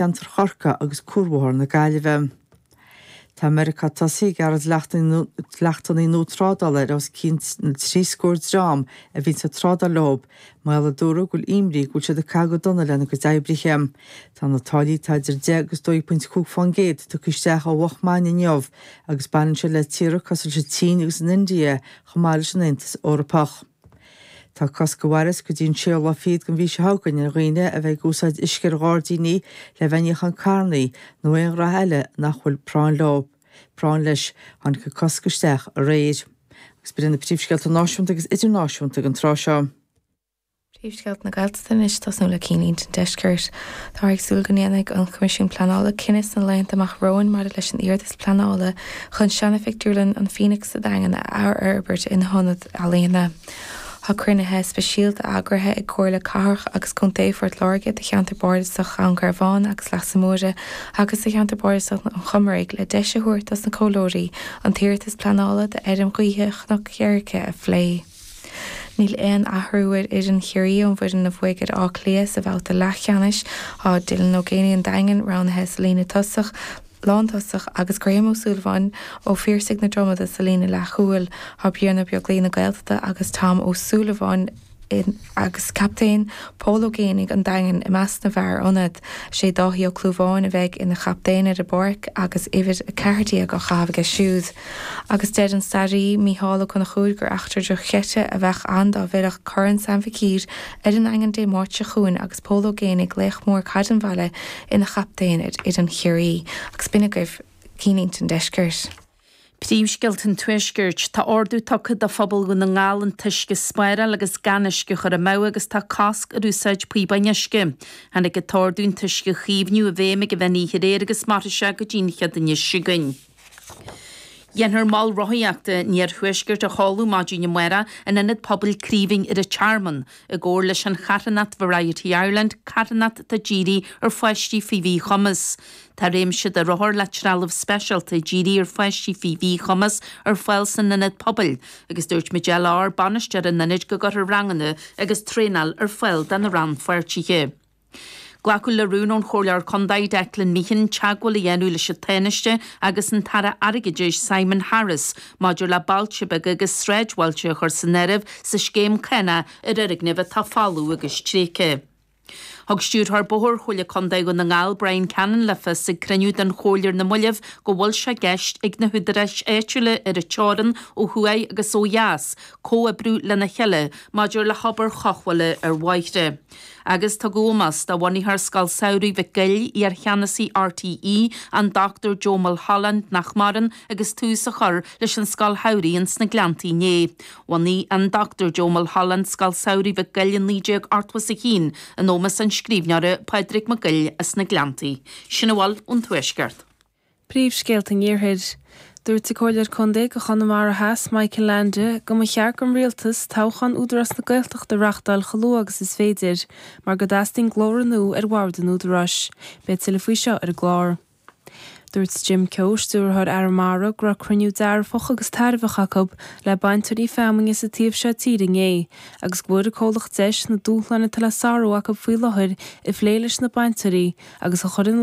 Ceantar Chorcaí agus Cuarbhóthar na Gaillimhe. Tá Meiriceá tosaithe ag gearradh dleachtannaí nua trádála ar os cionn na trí scór dream a bhíonn ag trádáil leo, mar gheall a dúradh go bhfuil imní go bhfuil siad ag caitheamh go dona lena gcuid oibrithe. Tá na táillí atá idir deich agus dó dhéag pointe cúig fán gcéad tugtha isteach ó mhoch maidin inniu agus baineann siad le tíortha cosúil leis an tSín agus an India chomh maith leis an Aontas Eorpach. Tá cosc a mhaireas go dtí an séú lá fichead den mhí seo chugainn ar dhaoine a bheith ag úsáid uisce ar ghairdíní le bheith ag níochán carrannaí nó aon ghraithe eile nach bhfuil práinn leo. práinn leis. Tháinig an cosc isteach aréir. Agus ba iad na príomhscéalta náisiúnta agus idirnáisiúnta ag an tráth seo. Príomhscéalta na Gaeltachta anois, tosnú le cinnlínte an deiscirt. Táthar ag súil go ndéanfaidh an Coimisiún Pleanála cinneadh sna laethanta amach romhainn maidir leis an iarratas pleanála chun seana-phictiúrlann an Phoenix sa Daingean a athfhorbairt ina hionad. Ealaíona. Tá cruinnithe speisialta eagraithe ag Comhairle Cathrach agus Contae Phort Láirge do Cheantar Bardasach Dhún Garbhán agus Leasa Móire agus do Cheantar Bardasach an Chomaraigh le deis a thabhairt dos na comhairleoirí an t-iarratas pleanála do fheirm ghaoithe Chnoc Sheirce a phlé. Níl aon athrú ar fhoireann Chiarraí ón bhfoireann a bhuaigh ar Áth Cliath sa bhabhta leathcheannais. Tá Dylan Ó Géanaigh an Daingin roghnaithe sa líne tosach le. lántosach, agus Graham Ó Súilleabháin ó Phiarsaigh na Dromoda sa líne leathchúil, tá Brian Ó Beaglaoich na Gaeltachta agus Tom Ó Súilleabháin agus captaen Pól Ó Géanaigh an Daingin i measc na bhfear ionaid. Is é Dáithí Ó Clúmháin a bheidh ina chaptaen ar an bpáirc agus uimhir 14 á chaitheamh aige siúd, agus deir an staraí Mícheál Ó Conchúir gur eachtra dochreidte a bheadh ann dá bhfillfeadh Corn Sam Mhic Uidhir ar an nDaingean Dé Máirt seo chugainn agus Pól Ó Géanaigh, laoch mór caid an bhaile, ina chaptaen ar fhoireann Chiarraí agus b'in agaibh cinnlínte an deiscirt. Príomhscéalta an tuaiscirt, Tá ordú tugtha do phobal Dhún na nGall an t-uisce a spáráil agus gan uisce a chur amú agus tá cosc ar úsáid píobáin uisce. Tháinig an t-ordú an t-uisce a chaomhnú i bhfeidhm ag an mheán oíche aréir agus mairfidh sé go dtí an chéad Aoine seo chugainn. Dhéanfar Mol Rothaíochta an Iarthuaiscirt a sheoladh maidin amáireach in Ionad Pobail Craoibhín ar an Tearmann, i gcomhar leis an charthanacht Variety Ireland, carthanacht atá dírithe ar pháistí faoi mhíchumas. Tá réimse de rothair le trealamh speisialta dírithe ar pháistí faoi mhíchumas ar fáil san Ionad Pobail agus dúirt Majella Orr, Bainisteoir an Ionaid go gcuirfear ranganna agus traenáil ar fáil do na rannpháirtithe. Glacadh le rún ón Chomhairleoir Contae, Declan Meehan, teagmháil a dhéanamh leis an Tánaiste agus an tAire Airgeadais, Simon Harris, maidir le bailte beaga agus sráidbhailte a chur san áireamh sa scéim cánach ar fhoirgnimh atá folamh agus tréigthe. Thug Stiúrthóir Bóthair Chomhairle Contae Dhún na nGall, Bryan Cannon, le fios ag cruinniú den Chomhairle ar na mallaibh go bhfuil sé i gceist ag na húdaráis áitiúla ar an teorainn ó thuaidh agus ó dheas comhoibriú lena chéile maidir le hobair chothabhála ar bhóithre. Agus tugadh ómós do bhunaitheoir Scoil Samhraidh Mhic Goill, iarcheannasaí RTÉ, an Dr Joe Mulholland, nach maireann, agus tús á chur leis an Scoil Samhraidh ins na Gleanntaí inné. Bhunaigh an Dr Joe Mulholland Scoil Samhraidh Mhic Goill i 1981, in ómos an scríbhneora, Pádraig Mac Goill as na Gleanntaí. Sin a bhfuil ón Tuaisceart. Príomhscéalta an Iarthair. Dúirt an Comhairleoir Contae do Chonamara Theas, Michael Leainde, go mba cheart don Rialtas toghchán Údarás na Gaeltachta a reáchtáil chomh luath agus is féidir mar go dteastaíonn glór nua ar bhord an Údaráis. Beidh tuilleadh faoi seo ar an gclár. Dúirt Jim Keogh, Stiúrthóir Arramara, go raibh cruinniú dearfach agus tairbheach acu le bainteoirí feamainne sa taobh seo tíre inné agus go bhfuair an comhlacht deis na dúshláin atá le sárú acu faoi láthair a phlé leis na bainteoirí agus a chur ina